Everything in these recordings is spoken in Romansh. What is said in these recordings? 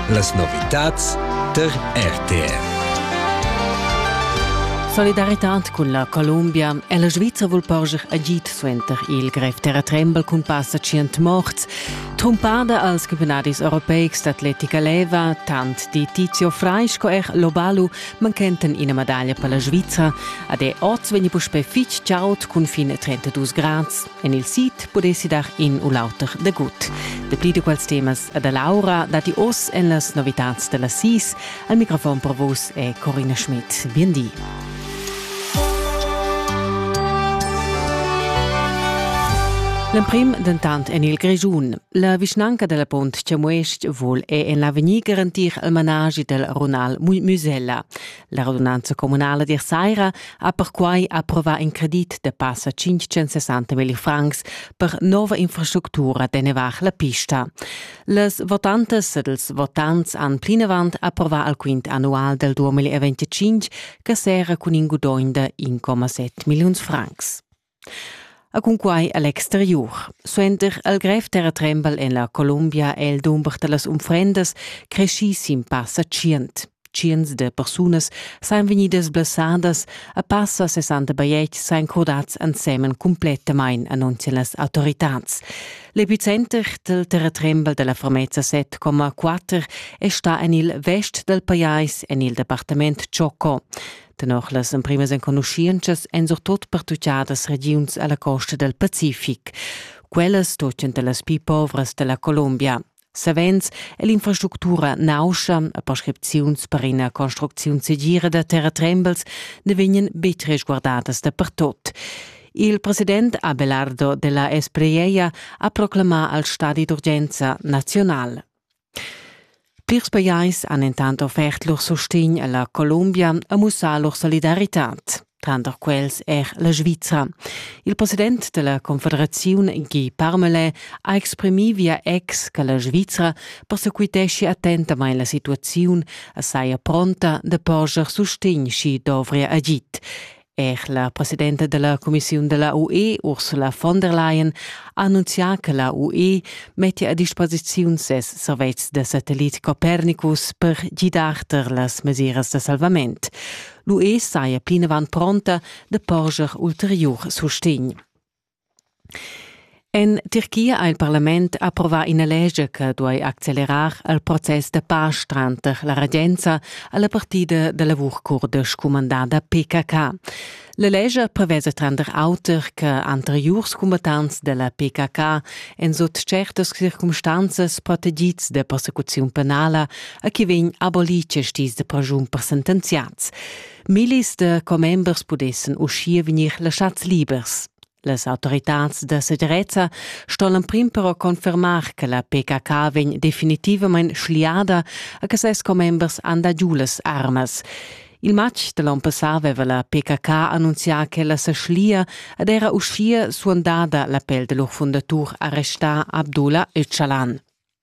Las novitads tar RTR. Solidaritad cun la Columbia è la Svizra vul porscher agid suenter il grev terratrembel cun passa tschient morts. Trumpada als campiunadis europeics d'atletica leva, tant di Tizio Frei sco er Lobalu manchenten ina medaglia per la Svizra. Ad è oz vegni puspè fitg chaud cun fin 32 grads. En il sid pudessi dar in u l'auter dagut. Dapli da quels temas e da Laura datti oz en las novitads da las sis. Al microfon per vus è Corina Schmidt. Bien di. L'emprim dentant en il Grischun. La vischnanca della Pont Chamues-ch vul è en l'avegnir garantir il managi del runal Musella. La radunanza communala d'ier saira ha perquai approvà in credit da passa 560 mil francs per nova infrastructura d'ennevar la pista. Les votantas ed ils votants han plinavant approvà al quint annual del 2025 che serra cun in gudogn da 1,7 milliuns francs. E cunquai a l'exteriur. Suenter il grev terratrembel en la Columbia è il dumber da las unfrendas creschì sin passa tschient. Tschients de persunas sajan vegnidas blessadas e passa 60 bajetgs sajan crudads ensemen cumplettamain, annunzian las autoritads. L'epicenter del terratrembel della Formezza 7,4 è stà en il vest dal pajais en il departament Chocó. Tenor las emprimas enconuschientschas èn surtut pertutgadas regiuns a la costa dal Pacific. Quellas stottien da las pli povras da la Colombia. Savens è l'infrastructura nauscha e prescripziuns per ina construcziun segira da terratrembels ne vegnan betg resguardadas dapertut. Il president Abelardo della Espriella ha proclamà al stadi d'urgenza nazional. Plirs pajais han entant offert lur sustegn a la Columbia e mussà lur solidaritad, tranter quels er la Svizra. Il president della Confederaziun Guy Parmelin ha exprimì via ex che la Svizra persequiteschi attentamain la situaziun e saja pronta da porscher sustegn, sch'i dovria agid. Er la presidenta della Commissiun della UE, Ursula von der Leyen, ha annunzià che la UE mettia a disposiziun ses servetschs da satellit Copernicus per gidar tar las mesiras da salvament. L'UE saja plinavant pronta da porscher ulteriur sustegn. En Tirchia ha il parlament approvà ina lescha che duai accelerar il process da pasch tranter la regenza e la partida da lavur curda scumandada PKK. La lescha prevesa tranter auter che anteriurs combattants da la PKK en sut certas circumstanzas protegids da persecuziun penala e che vegn abolì questis da praschun per sentenziads. Millis da commembers pudessan uschia vegnir laschads libers. Las autoritads da segirezza ston l'emprim però confermar che la PKK vegn definitivamain schliada a che ses commembers han dà giu las armas. Il matg da l'onn passà aveva la PKK annunzià ch'ella sa schlia ed era uschia suandada l'appel da lur fundatur arrestà Abdullah Öcalan.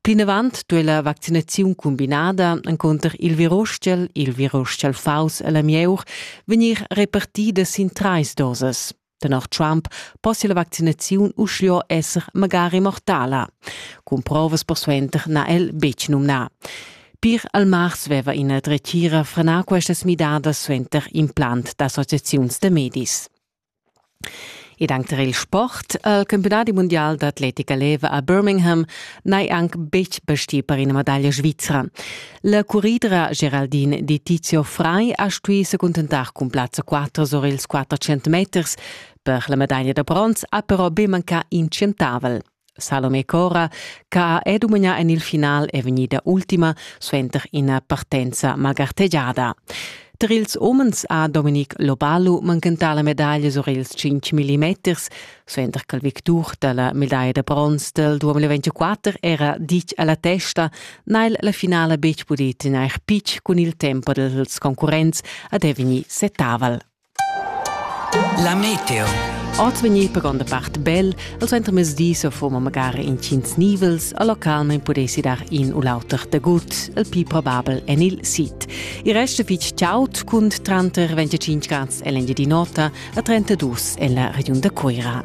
Plinavant duei la vaccinaziun cumbinada encunter il virustgel, il virustgel faus e la mieur vegnir repartida sin trais dosas. Tenor Trump possia la vaccinaziun uschia esser magari mortala. Cun provas persuenter n'ha el betg numnà. Pir al mars veva ina dretgira frenà questas midadas suenter implant d'associaziuns da medis. Ed anc tar il sport. Il campiunadi mundial d'atletica leva a Birmingham n'hai anc betg bastì per ina medaglia svizra. La curridra Geraldine Di Tizio Frei ha stuì se cuntentar cun plazza 4 sur ils 400 meters. Per la medaglia da bronz ha però be mancà in centavel. Salome Cora, che ha è dumagnà en il final è vegnida ultima suenter ina partenza malgartegiada. Tar ils umens ha Dominic Lobalu manchentà la medaglia sur ils 5 mm, suenter che il victur da la medaglia da bronz del 2024 era ditg a la testa, n'ha la finala betg pudì tegnair pitg cun il tempo dels concurrents ad è vegnì setaval. La meteo. Oz vegnir per gronda part bel, al suentermezdi so foma magari intgins nivels, a local non pudessi dar in u l'auter da gut, il più probabel en il sit. Il resto fitg ciaut cun tranter 25 grads e l'engia di nota a 32 en la regiun da Coira.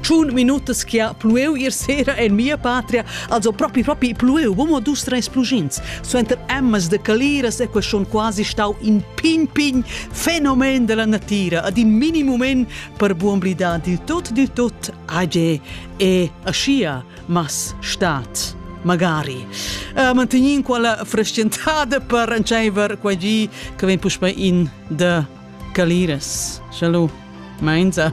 Tschun minutas che ha plueu ier sera en mia patria, also propi propi plueu, bomo dus treis plugins. Suenter emmas de caliras e queston quasi stau in pign pign fenomen della natira, ad in minimomen per buon blidar di tot di tot age e aschia mas stat magari. Uh, mantegnin quella frascentada per rantscheiver qua gi che ven puspe in de caliras. Schalu, meinza.